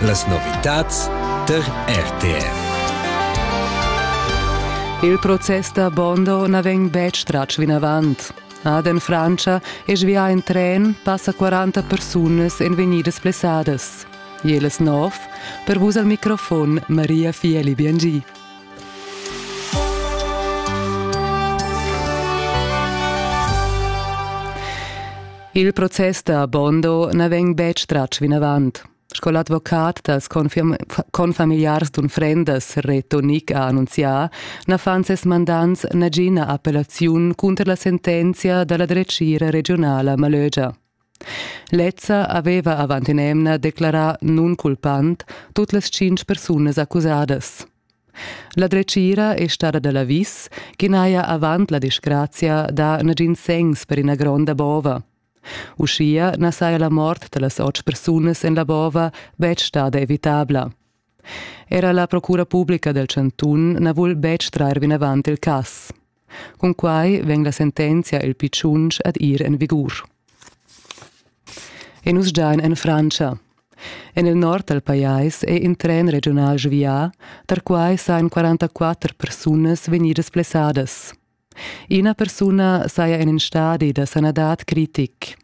Las novitads tar RTR. Il process da Bondo na vegn betg tratg vinavant. Ad en Frantscha è svià in tren passa 40 persunas en vegnidas blessadas. Jeles nov, per vus al microfon Maria Fieli Biangi. Il process da Bondo na vegn betg tratg vinavant. Sco l'advocat dals confamiliars d'unfrendas Reto Nick ha annunzià, na fan ses mandants nagina appellaziun cunter la sentenzia da la dretgira regiunala Malögia. Lezza aveva avant in'emna declarà nunculpant tut las tschintg persunas accusadas. La dretgira è stada da l'avis ch'i n'haja avant la disgrazia dà nagins segns per ina gronda bova. Uschia na saja la mort da las otg persunas en la bova betg stada evitabla. Era la procura publica dal chantun na vul betg trair vinavant il cass. Cun quai vegn la sentenzia el pitschunch ad ir en vigur. E nus giain en Frantscha. En il nord dal pajais è in tren regional svià, tar quai sajan 44 persunas vegnidas blessadas. Ina persuna saja en in stadi da sanadad critic.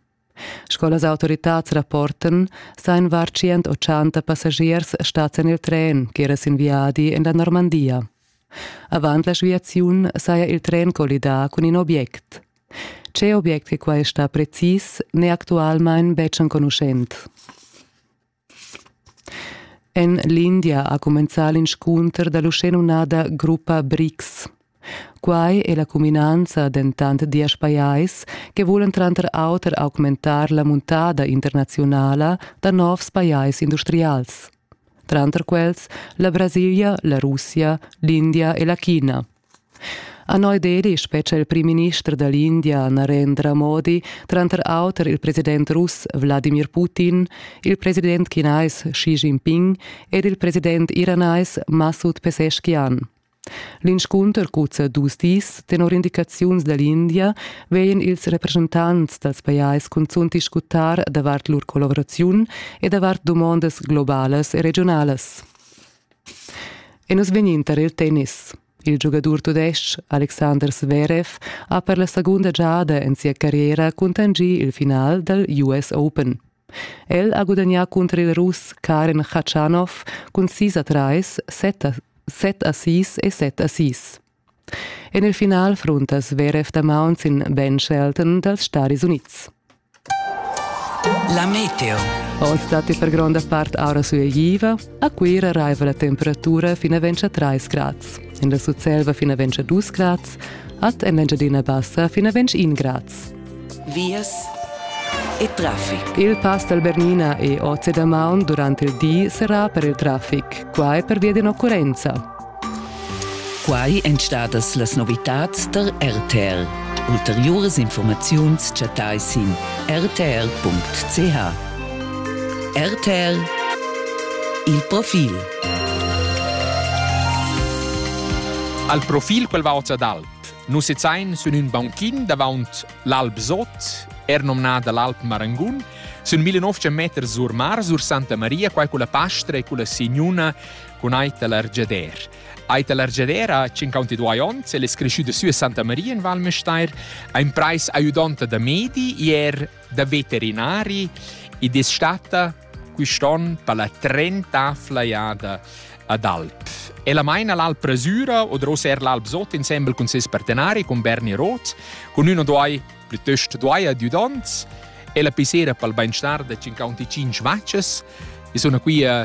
Sco las autoritads rapportan, sainvar tschient ochanta passagiers stats en il tren ch'era sin viadi en la Normandia. Avant la sviaziun saja il tren collidà cun in obiect. Tge obiect che quai sta precis n'è actualmain betg enconuschent. En l'India ha cumenzà l'inscunter da l'uschenumnada gruppa BRICS. Quai è la cuminanza dentant diesch pajais che vulan tranter auter augmentar la muntada internaziunala da novs pajais industrials. Tranter quels la Brasilia, la Russia, l'India e la China. A Neu Delhi spetga il primminister da l'India Narendra Modi tranter auter il president russ Wladimir Putin, il president chinais Xi Jinping ed il president iranais Masud Pezeshkian. L'inscunter cuzza dus dis. Tenor indicaziuns da l'India vegin ils representants dals pajais cunzunt discutar davart lur collaboraziun e davart dumondas globalas e regiunalas. E nus vegnin tar il tennis. Il giugadur tudestg Alexander Zverev ha per la segunda giada en sia carriera cuntanschì il final dal US Open. El ha gudagnà cunter il Russ Karen Khachanov cun sis a trais, set a, set a sis e set a sis. En il final fruntas VRF damaun sin Ben Shelton dals Staris Unids. La meteo. Oz datti per gronda part aura sueigiva. A Cuira raiva la temperatura fin a 3 grads. En la Sutselva fin a 2 grads. At en l'Engiadina Bassa fin a 1 grads. Vias e traffic. Il pass dal Bernina e Ozze da Maun durante il di serrà per il traffic. Qua è per via di un'occurrenza. Quai èn stadas las novitads tar RTL. Ulteriuras informaziuns chattai sin rtr.ch. RTL Il profil. Al profil quel va oz ad alp. Nus sezain sün ün bankin davant l'Alp Sot, er nomnada l'Alp Marangun, sün 1900 meters sur mar, sur Santa Maria, quai culla pastra e culla signuna cun ait da l'argeder. Ait da l'argeder ha 52 onns, el es creschü da sü a Santa Maria in Val Müstair, ha in prais aiudanta da medi, ier da veterinari ed es stata quist'on per la trenta flaiada ad Alp. Ella maina l'Alp Rasura o dros er l'Alp Sot insembel cun ses partenari, cun Berni Roth, cun ün o doi, plütöst doi adiudants. Ella pissera pel bainstar da 55 vacces e suna qui a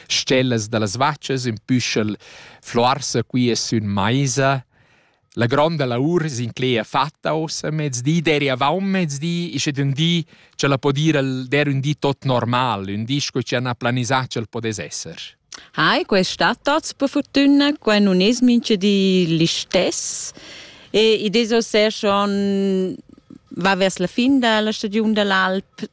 Stellas da las vachas ün püschel fluarsa quia sün maisa. La gronda laur s'inclegia fatta ossa mezdi, deri avaunt mezdi, ischet ün di cha la po dir el der ün di tot normal, ün di sco chi n'ha planisà ch'el podess esser. Hai, quest sta tots per fortuna, qua non es mincha di l'istess. E id es ossa schon va vers la fin da la stagiun da l'alp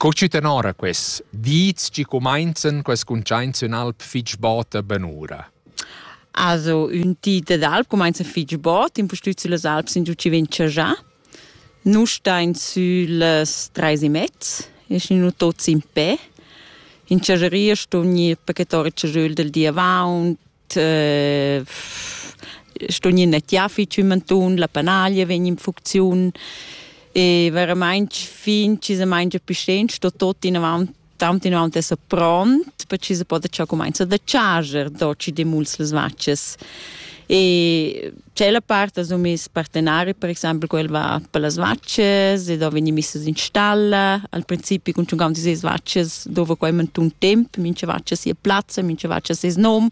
Co tü tenora quels dis chi cumainzan quest cuntschaints in alp fich bota benura? Also, ün di d'alp cumainza fich bot, impustüt süllas alps in giù chi vegn chajà. Nus stain süllas trais e mezz, eschin nu tuots in pe. In chageria ston gnir pachetà il chajöl del di avaunt, sto gnir nettiafi tschümentun, la panaglia vegn in funcziun e veramaing fin chi se maingia più sten sto tot inavant tant inavant esser pront per chi se poda già cumainza da charger do chi demuls las vaccias e Tschella part sun miss partenari, per exaimpel quel va per las vaccias ed ho vegni misses in stalla. Al principi cun tschun aunzi seis vaccias dovra quai mantun temp, mincha vaccia sia plazza, mincha vaccia seis nom.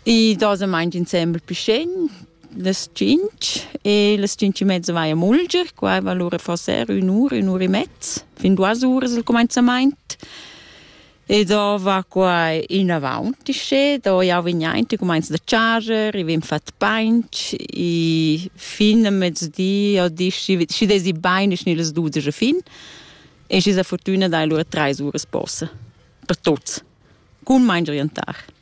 I doza maint insembel pü scegn, las tschinch e las tschinch e mezza vai a mulger. Quai va lura forsa er ün'ura, ün'ura e mezz, fin duas uras il cumainzamaint. E dova quai inavant uschè, do jau vegn aint, i cumainza da charger, i vegn fat painch, i fin a mezdi o di, schi, schi desi bain, schi las dudesch a fin. E schi sa fortüna dai lura trais uras posa, per tuots. Cun main orientar.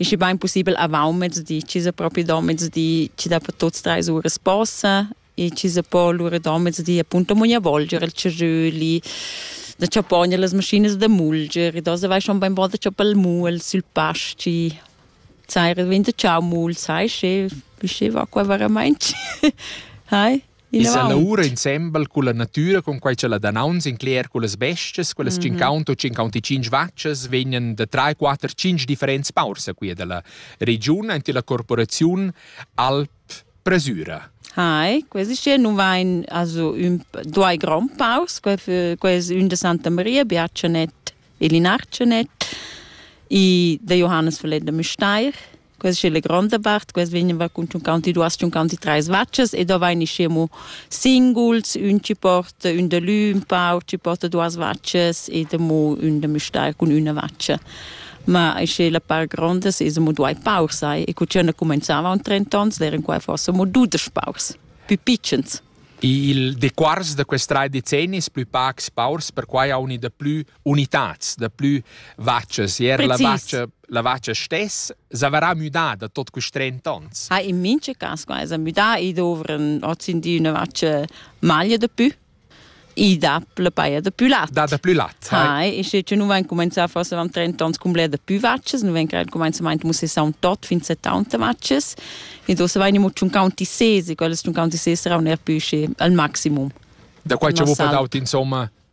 ist bain possibel avant mezdi, ci sa propi do mezdi, ci da per tuts drei ure sposa, e ci sa po lura do mezdi appunto mogna volgere il ceröli, da chappogna las maschinas da mulger, e da se vai schon bein bon da chappar il mul sul pasci, sai, vende ciao mul, sai, che, wie va qua veramente? Hai? I sa lavura insembel culla natüra con quai cha la danaunz incler cullas bestias, quellas mm -hmm. 50 o 55 vaccias vegnan da 3, 4, 5 differents paurs a quia da la regiun ante la corporaziun Alp Presura. Hai, questi hier nun vain also ün due grand paus, ques ün de Santa Maria, Biacenet e Linarcenet, i de Johannes Verleder Müsteir, Questa è la grande parte, questa veniva con 52-53 vacces e da vain ischiamo singuls, ün ci porta ün de lü, un pau ci porta duas vacces e de mo ün de müstair cun üna vacce. Ma isce la par grandes es mo duai paur sai e cu cena comenzava un 30 ans eran qua forse mo dudes paurs, più piccens. Il dequars da quest rai decennis plü pacs paurs perquai haun i da plü unitads da plü vacas er la vacha la vacha stess s'avrà müdà da tot quist 30 ans. Ha in minche cas qua es müdà i dovren hozindi üna vacha maglia da pü i dà la paia da plü lat. Da da plü lat. Hai, e sche nu vain cumanzà forse am 30 ans cum bler da plü vachas, nu vegn il cumanzamaint musse saun tot fin 70 vachas, e do se vain imo tschun counti sesi, quelle tschun counti sesi serà un er pü sche al maximum. Da quai ci vuo daut insomma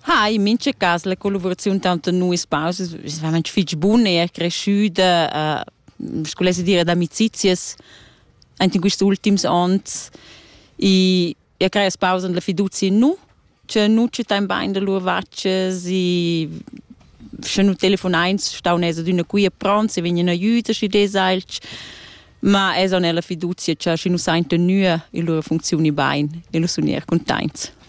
Ha in mincha cas la collaboraziun tanto nuis pausas es veramente fich bun, è er cresciuta, uh, sco lesse dire, d'amicizias anche in questi ultims anni e e creas pausa la fiducia nu che nu ci tain bain da lur vacces e sche nu telefonains stau nesa d'una qui e pronti vegni in aiuto schi desailch ma es on la fiducia che schi nu sain tenue in lur funzioni bain e lu sun er containts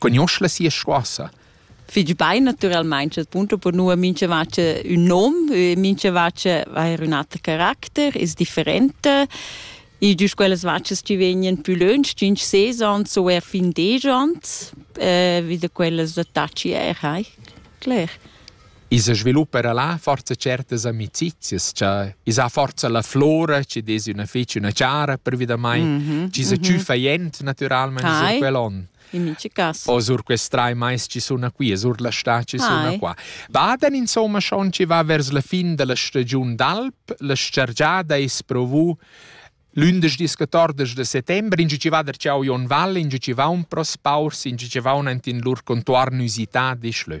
cugnuosch la sia scoassa. Figl bein naturalmein chat punto per nua mincha vacha ün nom, mincha vacha ha ün ater caracter, es differenta. Il gius quellas vachas chi vegnan pü lönch, tschinch ses ans o eir fin desch ans, vi da quellas attacchi eir, hai, cler. I sa sviluppa era là forza certas amicizias, cha i sa forza la flora, chi dess üna fich üna chara prevadamaing, mhm, chi sa mhm. tschüffa jent natüralmaing Ai. sur quel on. In mici cas. O sur quest trai mais chi suna qui, sur la sta chi suna Ai. qua. Baden insomma schon chi va vers la fin della stagiun d'alp, la scergiada es provu Lündisch discatordes de settembre, in ci va der ciao Jon Valle, in ci va un pros paurs, in ci va un antin lur contuarn usità di schlö.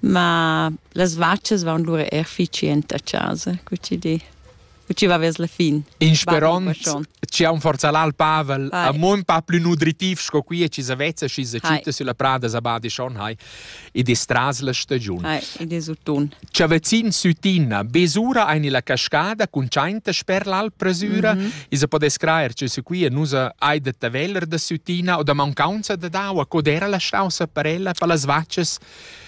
Ma las vachas vaun lura eir fich jent a chasa, cu chi di. Cu chi va vers la fin. In sperond chi haun forza l'al Pavel, hai. amon pa plü nutritiv sco qui e chi s'avvezza schi se citta sulla prada sabadi schon hai, id es tras la stagiun. Hai, id es utun. Chavazin sütina, besura aini la cascada cun tschainta sper l'al presüra, mm -hmm. isa podes craer che se qui e nusa hai de taveller da sütina o da mauncaunza da daua, cod era la stausa parella pa las vachas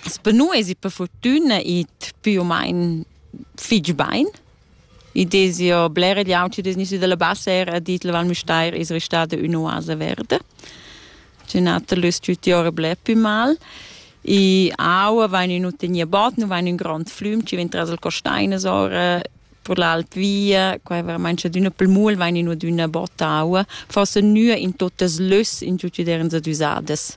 Sper nu esi per furtüna it più o main fich bain. I desi jo bler egl auti degnüsi da la bassa era a dit la Val Müstair es restada ün'oasa verda. Tschen'oter l'es tüti ora bler pü mal. I aua vain ün tegner bod, nu vain ün grond flüm chi vegn tras il costainas ora per l'alt via, qua veramaing chadüna pel muol vain ino d'üna bot aua, forsa nua in tuottas lös in tutti derens adüsadas.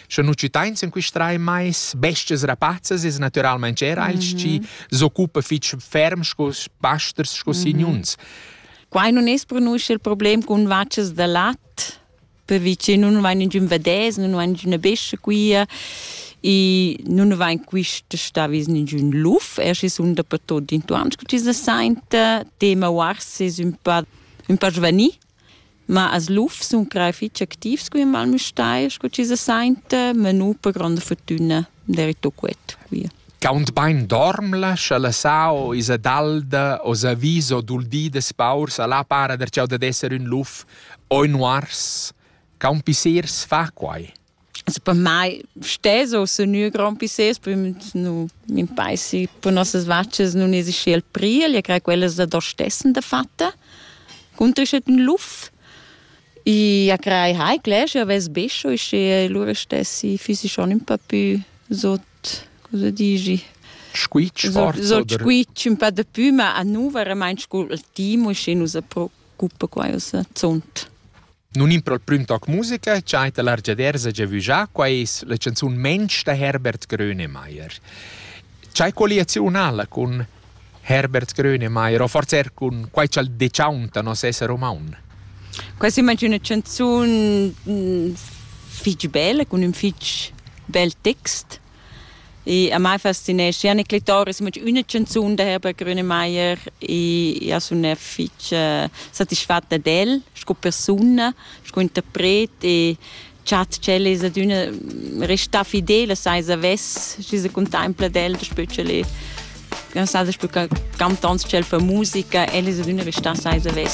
Sche nu citains in quist rai mais bestias rapazzas es natüralmaing era els mm -hmm. chi s'occupa fich ferm sco pasters sco mm -hmm. signuns. Quai non es pronunzia il problem cun vacas da lat, perché nun vain ingün vedès, nun vain ingüna bestia quia e nun vain quist stavis ingün luf, er schi sun dapertot intuans che ci se sainta, tema uars es ün pa ün pa giovanil Ma as lufs sun crei fich activs cun ün Val Müstair scu chi se sainta, ma nu per gronda furtüna derito quet via. Kaunt bain dormla, scha la sao esa dalda o s'ha vis o dul di da spaurs, a là para der chau dad esser ün luf o ün uars. Caun pissers fa quai. Se per mai stes o se nu grand pisses, poi nu m'impeisi per nossas vaccias nun esi schi al priel, io crei quellas da do stessen dafatta. Cuntrischet ün luf e a crei hai clesci aves bescio e schi lura stessi füsi schon ün pa pü sot cosa digi Squitsch forz? So squitsch ün pa da pü, ma a nu veramaint scu il timo, schi nu sa pro gruppa quai ussa zunt. Nun in pro il prüm toc musica cha ta l'argiadersa giavüjà qua es la chanzun Mensch da Herbert Grönemeyer. C'hai colliaziunala cun Herbert Grönemeyer o forse er cun quai ch'al dechauntano nos esser umaun? Quai s'immagina una chanzun fich bella, cun ün fich bel text Ich, am Mai faszinesci anche Clitoris, ma una canzone da Herbert Grönemeyer e ha una fece soddisfatta del, sco persona, sco interpret e chat c'è es ad una resta fidele, sai savess, ci se contempla del, specie le, non sa, specie cantants c'è fa musica, elle es ad una resta sai savess.